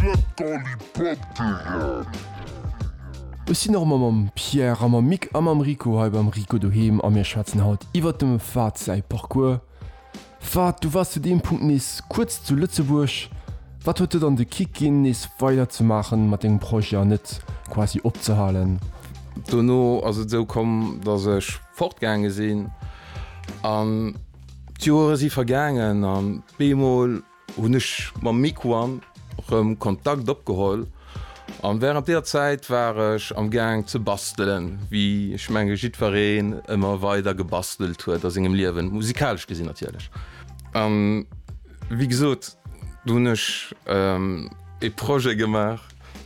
Splatterlipatteren! Ech sinn och erëm mam Pierre a mam Mick a mam Rico hei beim Rico Doheem a mir schwätzen haut iwwert dem Fahd säi Parcours. Fahd, du waars zu deem Punkt nees kuerz zu Lëtzebuerg. Wat huet dir dann de Kick ginn, nees weider ze maachen mat dengem Projet an net quasi opzehalen? Dono ass et esou komm, dass ech fortgaange sinn an d'Joere si vergaangen an bemol, Hunn ech mam Miquon rëm Kontakt opgeholl an während deer Zäit war ech am Gaang ze bastelen, wéi ech menge jiddwereen ëmmer weider gebastelt huet a sengem Liewen, musikalesch gesinn natierlech. An wéi gesot, do hunn ech ee Projet gemaach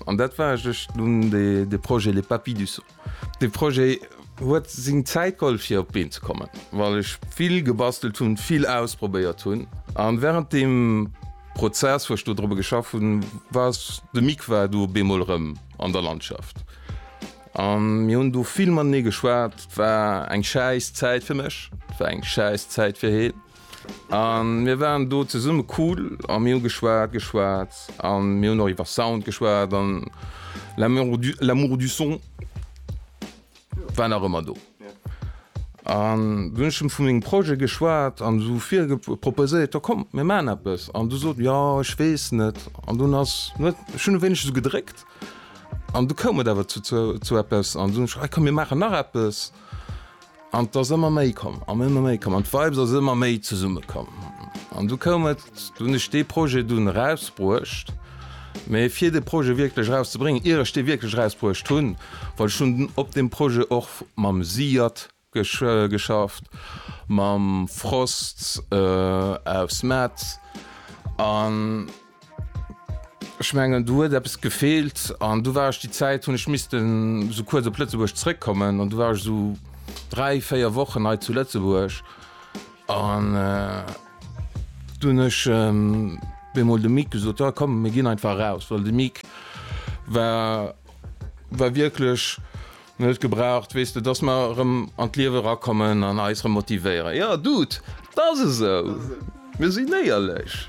an dat war, ech hunn de Projet Les Papy du Son. De Projet huet seng Zäit geholl fir op d'Been ze kommen, well ech vill gebastelt hunn, vill ausprobéiert hunn. A wärend deem Prozess, wou ech do drop geschafft hunn, war s de Mick war du op eemol erëm an der Landschaft. A mir hunn do vill matenee geschwat. Et war eng schäiss Zäit fir mech, et war eng schäiss Zäit fir heen. A mir waren do zesumme cool a mir hu geschwat, geschwat a mir hunn och iwwer Sound geschwat an l'amour du son war nach ëmmer do. An du hunn ech em vu mengem Projet geschwat an esou proposéiert, jo komm mir maachen eppes an du sot jo ech weess net an dunn ass net ech hunn e wéineg esou gedréckt an du koum et awer zu eppes an dunn ech komm mir maachen nach eppes. An et ass ëmmer méi komm an ëmmer méi komm an d'Vibes ass ëmmer méi zesumme komm. An du koum et, du hunn ech dee Projet dunn erausbruecht. Mee fir de Projet wierklech erauszebréngen, ier ech dee wierklech erausbruecht hunn, well ech hunn op deem Projet och mam Siad geschafft, mam Frost aus Metz an. Ech mengen do huet eppes gefeelt an du war ech déi Zäit hunn ech missten esou kuerz op Lëtzebuerg zréckkommen an du war ech esou dräi, véier Wochen hei zu Lëtzebuerg an du hunn ech bemol dem Mike gesot, jo komm mir ginn einfach eraus, well de Mike war war wierklech. Mir huet gebraucht, weess de, dass mer erëm an d'Liewe erakommen an eis erëm motivéieren. Jo, Dude, et ass esou, mir sinn éierlech.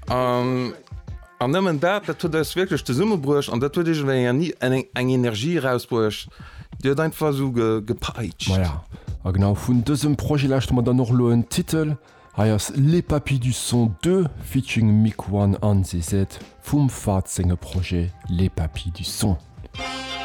An nëmmen dat, dat huet eis wierklech zesummebruecht an dat huet iergendwéi eng Energie erausbruecht, déi huet einfach esou gepeitscht. Maja, a genau vun dësem Projet lauschte mer dann och elo en Titel. Hei ass Les Papis du Son Deux featuring Miquann an Zezet vum Fahd senge Projet Les Papis du Son.